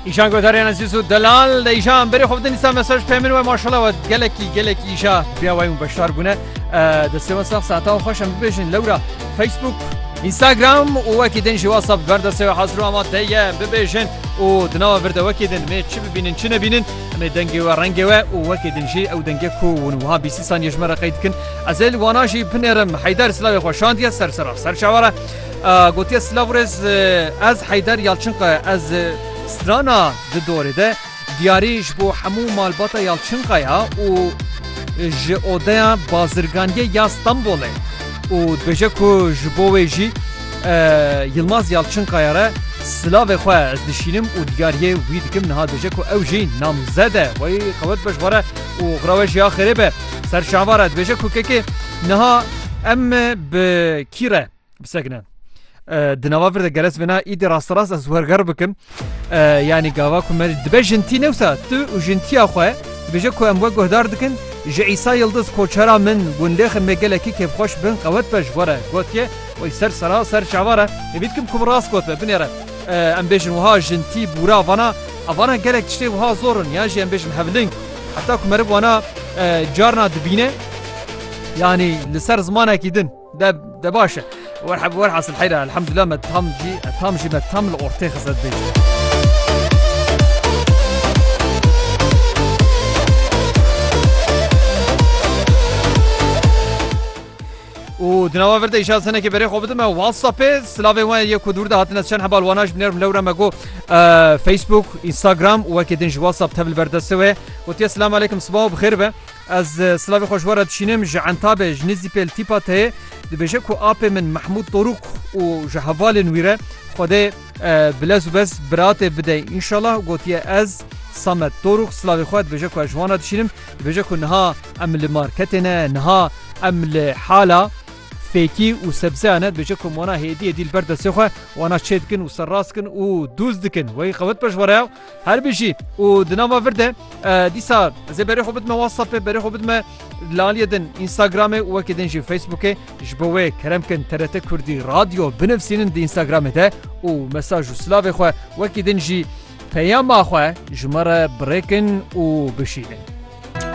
Îşan godarê nezîz û delal de îşan berê xwe bidin îsa mesaj pê min we maşala we gelekî gelekî îşa biya wayû beşdar bûne destê we sax saeta xweş em bibêjin lewra Facebook Instagram û wekî din jî WhatsApp ver destê we hazir û ama te ye bibêjin û di nava vir de wekî din mê çi bibînin çi nebînin em ê dengê we rengê we û wekî din jî ew dengê ku hûn wiha bîsî saniye ji me re qey dikin ez ê li wana jî binêrim heyder silavê xwe şandiye ser sera ser çawa re Gotiye Silavrêz ez Heyder Yalçinka ez strana di dorê de diyarî ji bo hemû malbata Yalçinkaya û ji odeya bazirganiyê ya Stenbolê û dibêje ku ji bo wê jî Yilmaz Yalçinkaya re silavê xwe ez dişînim û diyariyê wî dikim niha dibêje ku ew jî namzede xwe qewet be ji xwe re û xira we jî ya xêrê be. Ser şava re dibêje ku kekê niha em bi kî re bisekine. Di nava vir de geres vêna îdî rasterast ez werger bikim. Yanî gava ku me dibe jintî newsa tu û jintiya xwe dibêje ku em we guhdar dikin ji Îsa Yildiz koçera min gundêxê me gelekî kêfxweş bin qewet be ji xwe re gotiye wê ser sera ser çava re hêvî dikim ku rast got be binêre em bêjin wiha jintî bûra vana evana gelek tiştê wiha zor in yan jî em bêjin hevling Heta ku meriv wana carna dibîne yanî li ser zimanekî din de de baş e. Werheb werhasil heyra elhamdullah me tam jî tam jî me tam li ortê xizet bê. û di nava vir de îşal senekê berê xwe bidim me WhatsAppê silavê we yê ku dûr de hatine çend hebal wana ji binêr lewre me got Facebook Instagram û wekê din ji WhatsApp tevil berdestê wê gotiye silam aleykum siba û bixêr be ez silavê xwe ji we re dişînim ji entabê ji nêzî pêl tîpa teyê dibêje ku apê min Mehmûd Dorûk û ji hevalên wî re xwedê bilez û bez biratê bide înşallah gotiye ez Samet Dorûk silavê xwe dibêje ku ez ji wan re dişînim Dibêje ku niha em li marketê ne, niha em li hala fêkî û sebzeya ne, dibêje ku em wana hêdî hêdî li ber destê xwe wana çê dikin û serrast dikin û dûz dikin. Wê qewet pejware ya. Her bijî û di nava vir de dîsa ez ê berê xwe bidime WhatsAppê, berê xwe bidime li aliyê din Instagramê û wekî din jî Facebookê. Ji bo wê kerem kin TRT Kurdî Radyo binivîsînin di Instagramê de û mesaj û silavê xwe wekî din jî Peyama xwe ji me re birêkin û bişînin.